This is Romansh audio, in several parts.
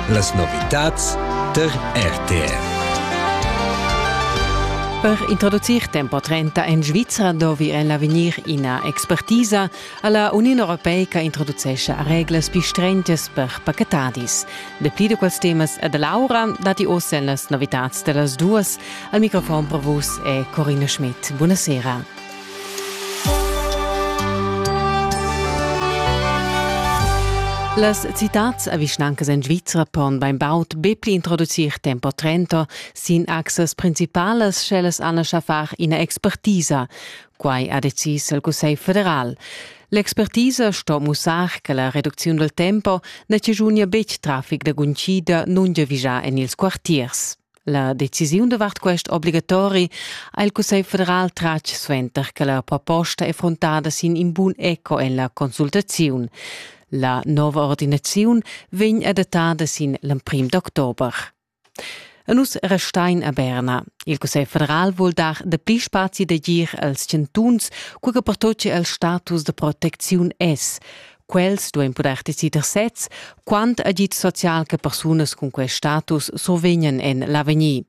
Las novitads der RTR. Per introducir tempo 30 en Svizra dovi el avegnir ina expertisa alla Union Europeica introducescha reglas pi strengias per pachetadis. De pli de quels temas e de Laura dati ossa en las novitats dellas duas. Al microfon per vus è Corina Schmidt. Buonasera. Las citats a vischnancas en Svizra pon bainbaud be pli introducir tempo trento sin axas principalas sch'ellas han a far ina expertisa. Quai ha decis il Cussegl federal. L'expertisa sto mussar che la reducziun dal tempo na chaschunia betg traffic da guncida nungiavigià en ils quartiers. La decisiun davart quest obligatori ha il Cussegl federal tratg suenter che la proposta è frontada sin in bun eco en la consultaziun. La nova ordinaziun vegn adattada sin l'emprim d'october. E nus restain a Berna. Il Cussegl federal vul dar dapli spazi d'agir als chantuns, cura che pertoccia il status da protecziun es. Quels duein puder decider sez, quant agid social che persunas cun quei status survegnan en l'avegnir.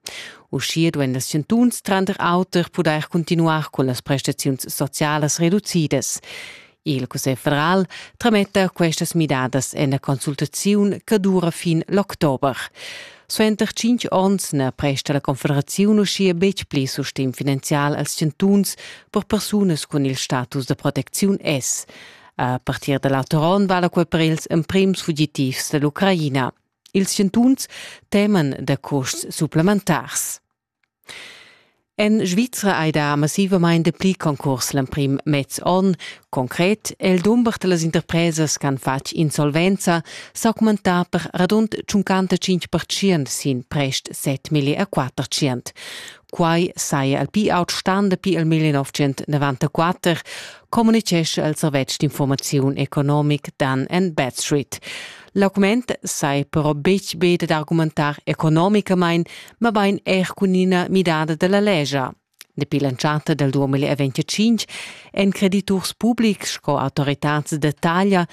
Uschia duein las chantuns tranter auter pudair continuar con las prestaziuns socialas reducidas. Il Cussegl federal trametta questas midadas en la consultaziun che dura fin l'october. Suenter cinc onns na presta la Confederaziun uschia betg pli sustegn finanzial als chantuns per persunas cun il status da protecziun S. A partir da l'auter onn vala quai per ils emprims fugitivs da l'Ucraina. Ils chantuns teman da custs supplementars. En Svizra hai dà massivamain dapli concurs l'emprim mez onn. Concret è il dumber da las interpresas ch'han fatg insolvenza s'augmentà per radund 55% sin prest 7 milli e 400. Quai saja il pi aut stan dapi il 1994, communitgescha il servetsch d'informaziun economic Dan and Backstreet. L'augment sai però betg be dad argumentar economicamain, mabain er cun ina midada da la legia. Dapi l'entschatta del 2025 èn crediturs publics sco autoritads da taglia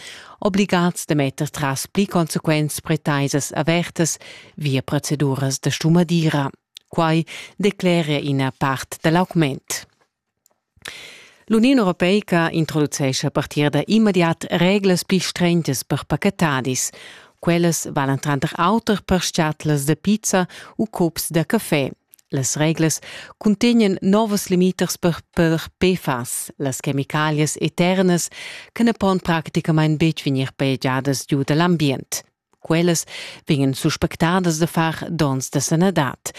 obligads da metter tras pli consequents pretaisas avertas via proceduras da stumadira. Quai decleria ina part da l'augment. L'Uniun europeica introducescha a partir da immediat reglas pli strentas per pachetadis. Quellas valan tranter auter per schatlas da pizza u cups da café. Las reglas cuntegnan novas limitas per, per PFAS, las chemicalias eternas che na pon praticamain betg vegnir paegiadas giu da l'ambient. Quellas vegnan suspectadas da far dons da sanadad.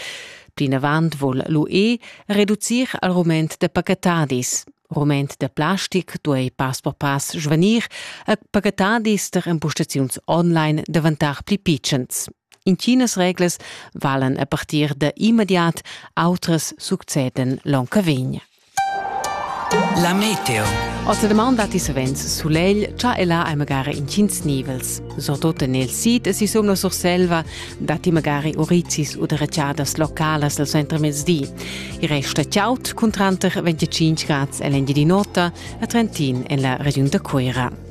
Plinavant vul l'UE reducir al rument de pacatadis. Rument de plastic duei pass per pass svanir a pacatadis der impostaziuns online davantar pli pitschens. Intinas reglas valen a partir da immediat, outras succeden l'onca vegn. La meteo. Oz la man datti savens sulegl, cha e là hai magari intgins nivels. Surtut en il sid e sisum la Surselva datti magari urizis u deretschadas localas al centremezdi. Il resta chaud cun tranter 25 grads en l'Engiadin'Ota e Trentin en la regiun da Cuira.